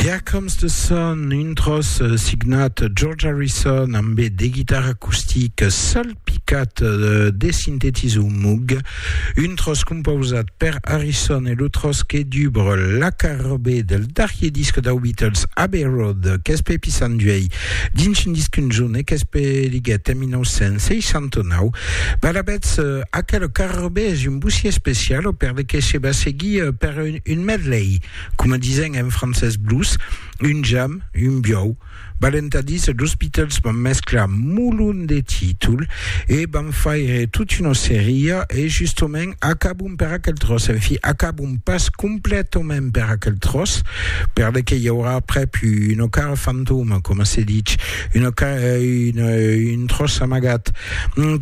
Here Comes the Sun, un tros eh, signat George Harrison amb de guitarra acustic salpicat eh, de sintetisor mug, un tros composat per Harrison e lo tros que dubre la carrobé del darrier disc dau Beatles Abbey Road qu'es pe pissan duei dins un disc un junt e qu'es pe liguet en 1969. Balabets, eh, aquel carrobé es un bossier especial o per de que se va seguir eh, per un Un medley, coma disen en francés blues, un jam, un biòu. Balentadís, los Beatles van mesclar molon de títols e van faire tot una seria e justement acabon per aquel tròç, en fi, acabon pas completament per aquel tròç, per le que i aurà aprèp una cara fantoma, coma se dich, una, un tròç amagat,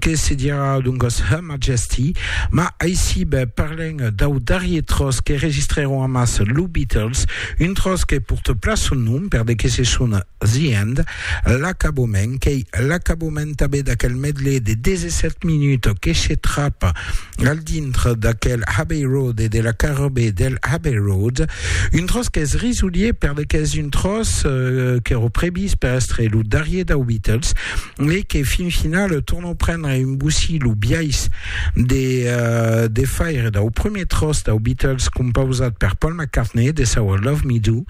que se dirà doncas, hum, Majesty, ma aisib parlem dau darrier tròç que registrèron amàs lo Beatles, un tròç que porte plan son nom per de que se son The End, l'acabament, qu'ei l'acabament tanben d'aquel medley de 17 minuts que se trap al dintre d'aquel Abbey Road e de la carrobée del Abbey Road, un tròç qu'es risolier per de qu'es un tròç qu'èra previst per èstre lo darrier dau Beatles, e que fin finale tornò prendre un gossi lo biais de, uh, de faire dau premier tros dau Beatles compausat per Paul McCartney de saua Love Me Do.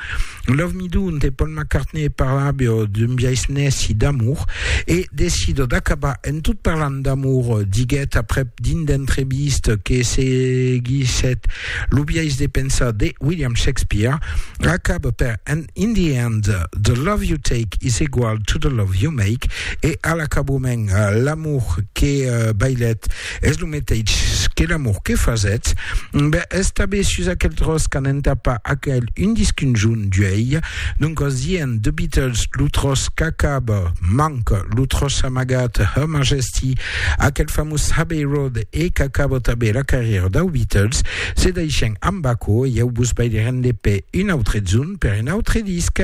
Love Me Do, onte Paul McCartney parlabio d'un biais nèci d'amor e decido d'acabar en tot parlant d'amor, diguèt aprèp dins d'entreviste que seguissèt lo biais de pensar de William Shakespeare, Acaba per And in the end, the love you take is egual to the love you make, e a l'acaboument, l'amor que bailèt es lo meteitz que l'amor que fasètz. Ben, es tabé sus aquel tròç qu'an entapa aquel un disc un junh d'uèi. Doncas dient The Beatles, lo tròç qu'acaba, manca lo tròç amagat, Her Majesty, aquel famós Abbey Road, e qu'acaba tabé la carrièra dau Beatles. Se deishen amb aquò e ieu vos veirem de pè un autre jorn per un autre disc.